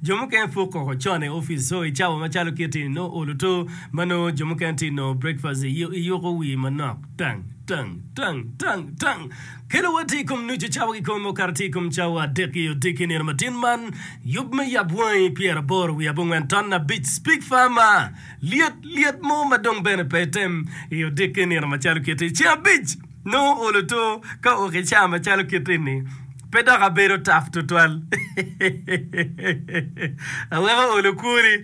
Jo mukene pwok kong ocon i opic so i cawa macalo kit-ti nongo olo to ma nongo jo mukene tye nongo brekpast i yuko wii manok. Tang! Tang! Tang! Tang! Tang! Kelo wa tye i kom nucu cawa ki kome okato tye i kom cawa adek i odiki nino matin man. Yub me yab wangi pyer aboro wiye abongwen ton abic speak farmer lyet lyet mo ma dong bene pe item i odiki nino macalo kit-ti ceng abic. Nongo olo to ka oki ca macalo kit eni pe dok abedo tap tutwal. Aweko olo kwoni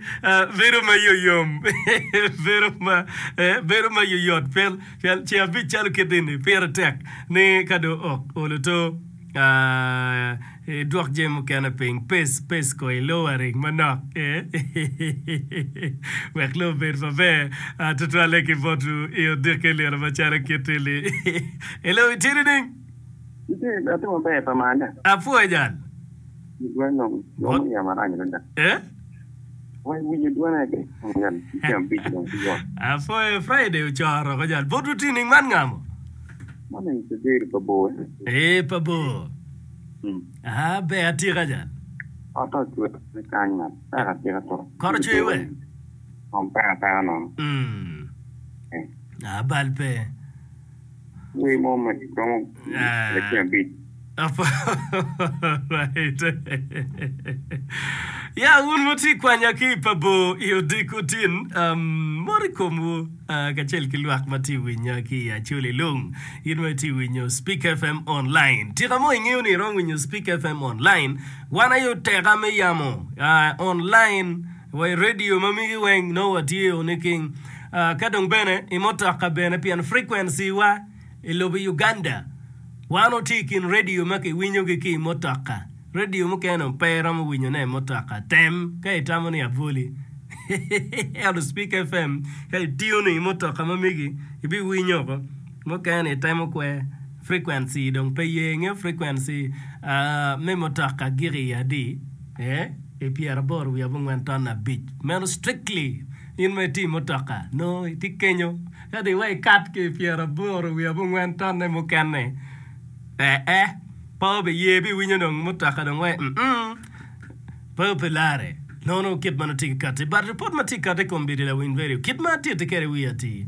bedo ma yoyom, bedo ma yoyot pien ce abic calo kit eni pire tek ni ka dong ok olo to. Idwok jami mukene piny. Pes, pes ko i lowa ring manok wek lobo obed maber tutwalle ki bot ru i odiki i liro macalo kit i li. Hello, itye nining? Itye, atye maber pa mane? Apwoya jal. Dwong, romo yamo arac adada. Eh? Apwoyo Friday ocoro ko jal bot luti ning man ngamo? Ee pa bor aa ber atika jal. Kot ocwer we? Aa bal pe. Wer mo ma romo lacen abic. Alright. Ya, un ma wutye ka kwanya ki i pa bor i odiko tin, um, mot i komwu ah, kacel ki lwak ma tye ka winya ki i Acholi Lung. In ma itye ka winyo Speak FM Online, tika mo ingeyo ni iromo winyo Speak FM Online? Wan aye oteka me yamo ah, online. wa i radio ma migi weng nongo watye o niking ka dong bene i mutoka bene pien frequency wa i lobo Uganda wan watye i kin radio ma ki winyo gi ki i mutoka radio mukene dong pe iromo winyo ne i mutoka tem ka i tamo ni abwoli ento speaker FM ka i tune i mutoka ma migi i bi winyo oko mukene ni i temo kwer Frequency dong pe ye inge frequency me mutoka gik i adi ee pyera boro wiye abongwen ton abic meno strictly in ma iti mutoka nongo iti kenyo kadi iwe ikat ki pyera aboro wiye abongwen tonne mukene ee pe obi ye bi winyo dong mutoka dong wai pe ope lare nono kit meno tiki kati but report ma tye kati kom bidi lawiny radio kit ma atiti kede wiya ati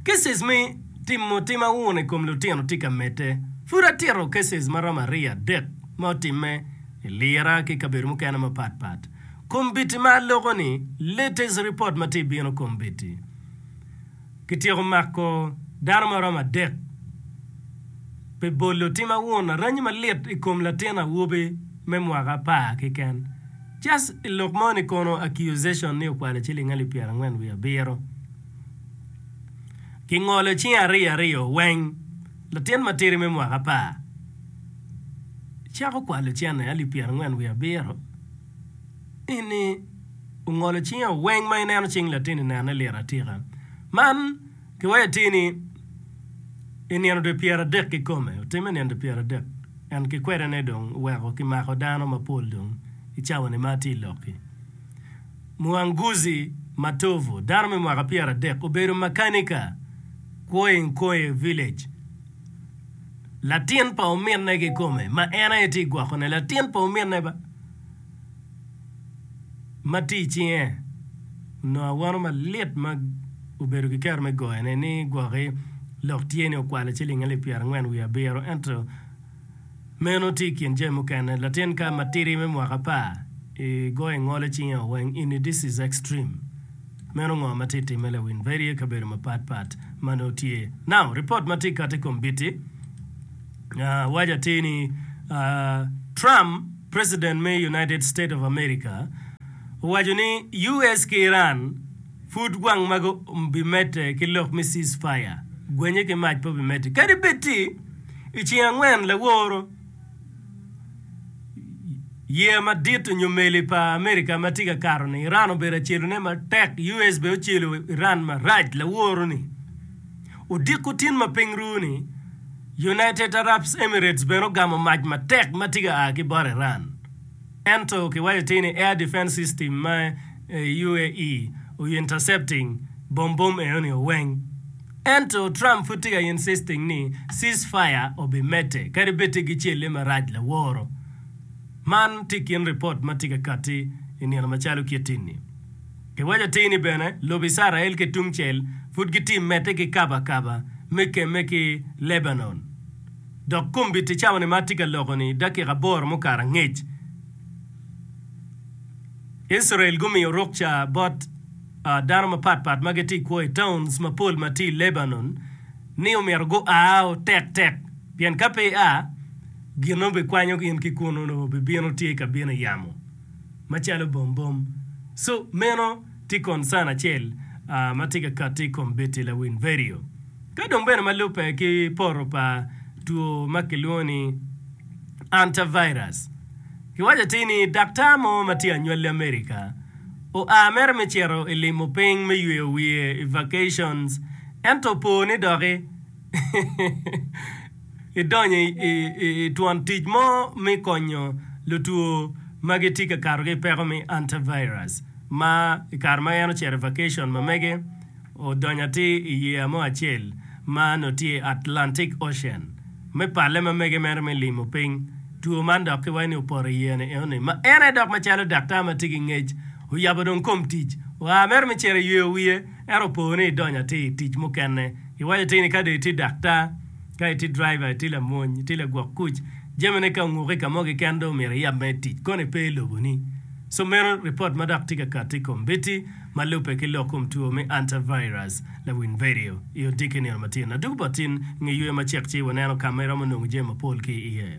kisses me Timo tim auno i kom lutino tye ka medde. Pud atito cases ma romo aryo adek ma otimme i lira ki i kabedo mukene mapat pat. Kombiti ma aloko ni latest report ma tye bino kombiti kityeko mako dano ma romo adek pi bolo tim auno aranyi malit i kom latin awobi me mwaka apar keken just i lok mo ni kono accusation ni okwalo ciling alip pyerangwen wiye abiro. Kingolo cinge ariyo ariyo weng. Latin matidi me mwaka apar cako kwalo cene alip pyerangwen wiye abiro eni ongolo cinge o weng ma ineno cing latini nene lit atika. Man kiweyo atir ni i nino dwe pyeradek kikome otime nino dwe pyeradek and kikwede ne dong oweko kimako dano mapol dong i cawani ma atye i lokki. Muanguzi Matovu, dano me mwaka pyeradek, obedo makanika kwo i Nkoye Village. Latin pa ominne kikome ma en aye tye gwokone, latin pa ominne ba, ma tye i cinge, onongo awono malit ma obedo ki kero me goyone ni gwoki lok tye ni okwale ciling alip pyerangwen wiye abiro ento Meno tye i kin jami mukene. Latin ka matidi me mwaka apar i goyo ingolo icinge o weng ini this is extreme. Meno ngo ma tye i timme lawin Veri i kabedo mapat pat ma nongo tye. Now report ma tye i kati kombiti waco atir ni Trump president me United State of America owaco ni US ki Iran pud gwang magi obi mete ki lok me cease fire, gwenye ki mac pe obi mete kadi bed ti. I ceng angwen laworo yeya madit onyo meli pa America ma tye ka kato ni Iran obedo acelu ne matek US bene ocelo Iran marac laworo ni odiko tin ma piny ru ni United Arabs Emirates bene ogamo mac matek ma tye ka aa ki bot Iran. Ento kiwaco tir ni Air Defense System ma UAE oyo intercepting bom bom eno ni oweng. Ento Trump pud tye ka insisting ni ceasefire obi mete kadi bed tye gicelle marac laworo. Man tye i kin ripot ma tye ka kati i nino macalo kiti ni. Kiwaco tir ni bene lobo Icrael ki tungcel pud gitye mete ki kaba kaba me kemme ki Lebanon. Dok kombit-ti cawa-ni ma atye ka loko-ni i dakika aboro mukato angec. Israel gumiyo ruk ca bot dano mapat pat ma gitye i kwo i towns mapol ma tye i Lebanon ni omyero gua o tek tek, pien ka pe ia, gin ma bikwanyo in ki kunu-nu bibino tye ka bino i yamo macalo bombom. So, meno. Tye koncan acel ma tye ka kati i kom Betty lawin vedio ka dong bene ma lubbe ki poto pa two ma kilwongo ni Antivirus. Kiwaco atir ni daktar mo ma tye anywali America oa mere me cito i limo piny me yweyo wiye i vacations ento opoo ni doki idonyo i twon tic mo me konyo lutwo ma gitye ka kato ki i peko me antivirus ma i kare ma en ocito i vacation mamege odonyo atir i yeya mo acel ma onongo tye i Atlantic Ocean me palle mamege mere me limo piny two man dok ki waco ni opoto i yeya ni enoni ma en aye dok macalo daktar ma tye ki ngec oyabo dong kom tic oa mere me cito i yeya wiye. Ento po ni idonyo atir i tic mukene, iwaco atir ni ka dong itye daktar, ka itye driver, itye lamony, itye lagwok kuc, jamine ka onguko i ka mo keken dong omyero iyab mere tic, koni pe i loboni. So meno ripot ma dok tye ka kati i kombiti ma lubbe ki lok kom two me Antivirus, lawiny vedio, i odiki nino matino. Adwogi bot in nge yweyo macek ci waneno ka ma iromo nongo jami mapol ki iye.